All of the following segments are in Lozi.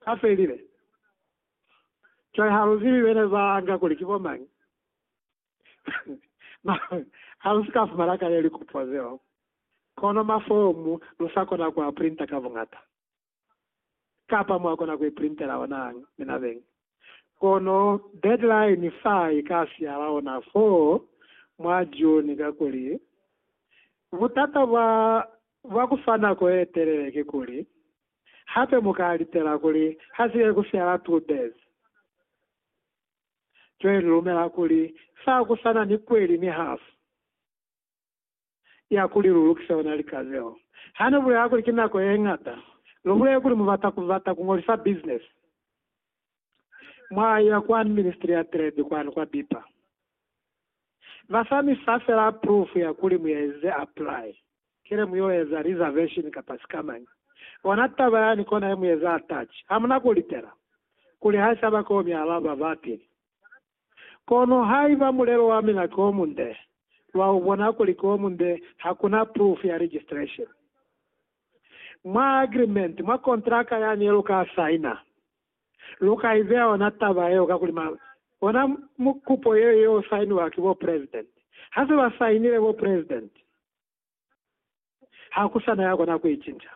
a felile. Cwale ha lu zibi bene ba nga kuli ki bo mañi. Mara, ha lu si ka fumana kale likupo zeo, kono mafomu lu sa kona ku a printa ka buñata. Kapa mwa kona ku iprintela ona minabeng. Kono deadline fa i ka siala ona fo mwa June, kakuli butata bwa, bwa ku fa nako ye telele kikuli, Hape mu ka litela kuli ha si ke ku fyala two birds. Joy ni lumela kuli fa ku sa na ni kweli ni half ya kuli lu lukise ona lika zeo. Ha ni bulela kuli ki nako ye ñata, lu bulele kuli mu bata ku bata ku ngolisa business mwaya kwa ministry ya trade kwanu kwa bipa basani fa fela proof ya kuli muyaezize apply kile muyo eza reservation kapa sikamañi ona taba yani kona ye mueza attach hamuna ku litela kuli haisaba ko mi alaba ba pili kono haiba mulelo wa mina ki omunde lwa ubona kuli ki omunde hakuna proof ya registration mwa agreement mwa kontraka yani ye lu ka signer Lu ka i beya ona taba yeo kakuli ma, bona mukupo yeo ye o sainiwa ki bo president. Ha se ba sainile bo president, ha ku sa na ya kona ku i cinca.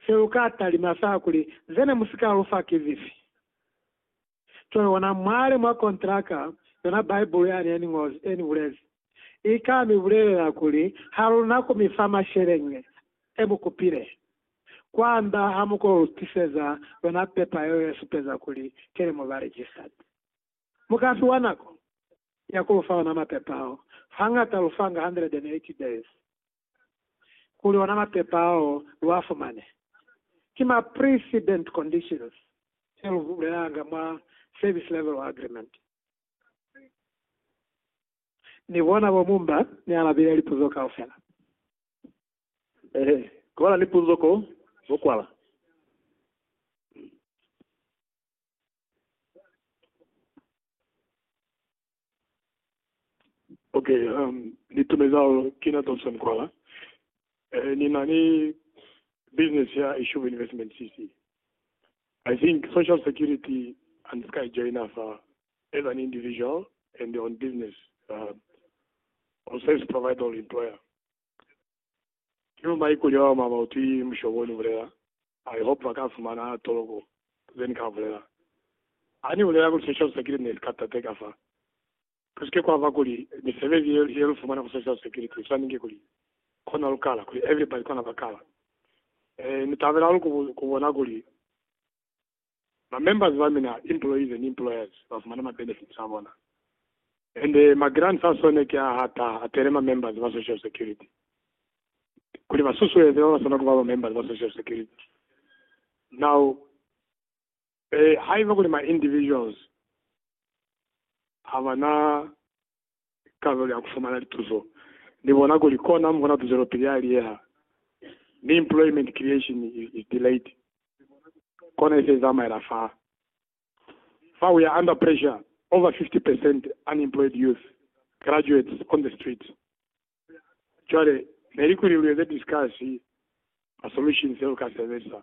Se lu ka talima sa kuli, Ze ne mu si ka lu fa ki zifi? Cwale ona mwale mwa kontraka, yona Bibele ya ne ya ni bulezi. I ka mi bulelela kuli, Ha lu na ku mi fa masheleñi e mu kupile. Kwamba ha mu ko lu tiseza yona pepa yeo ye supeza kuli ki li mu ba registered. Mu ka fiwa nako ya ku lu fa ona mapepa ao. Hangata lu fanga 180 days kuli ona mapepa ao lu a fumane. Ki ma precedent conditions se lu bulelanga mwa Service Level Agreement. Ni bona bo Mumba ni alabile lipuzo kaufela. Ehe, ku bala ni puzo ko bo kwala. Okay, um, ni tumeza holo kina Thompson kwala. Eh, ni na ni business ya Ishuba Investment CC. I think Social Security and ska i joiner fa as an individual and on business uh, or service provider or employer. Kilu mai kulya wa mama uti mushobo ni bulela. I hope ba ka fumana toloko ze ni ka bulela. Ani bulela kuli Social Security ne ska tateka fa. Kusike kwa ba kuli misebezi ye, ye lu fumana ku social security i swaningi kuli kona lu kala, kuli everybody kona ba kala. E, ni tabela hahulu ku, ku bona kuli ba members ba mina, employees and employers, ba fumana ma benefits a bona. And ma grants a sone ki a hata, atele ma members ba social security, kuli ba susueze ba ba sona ku ba ba members ba social security. Now, Ee, haiba kuli ma individuals habana kabelo ya kufumana lituzo, Ni bona kuli kona mukona tuzelopili ya liyeha, mi employment creation is, is delayed. Kona ise izamaela fa. Fa we are under pressure, over 50 percent unemployed youth, graduates on the street. Cwale, neli kuli lu eze discuss ma solutions e lu ka sebelisa.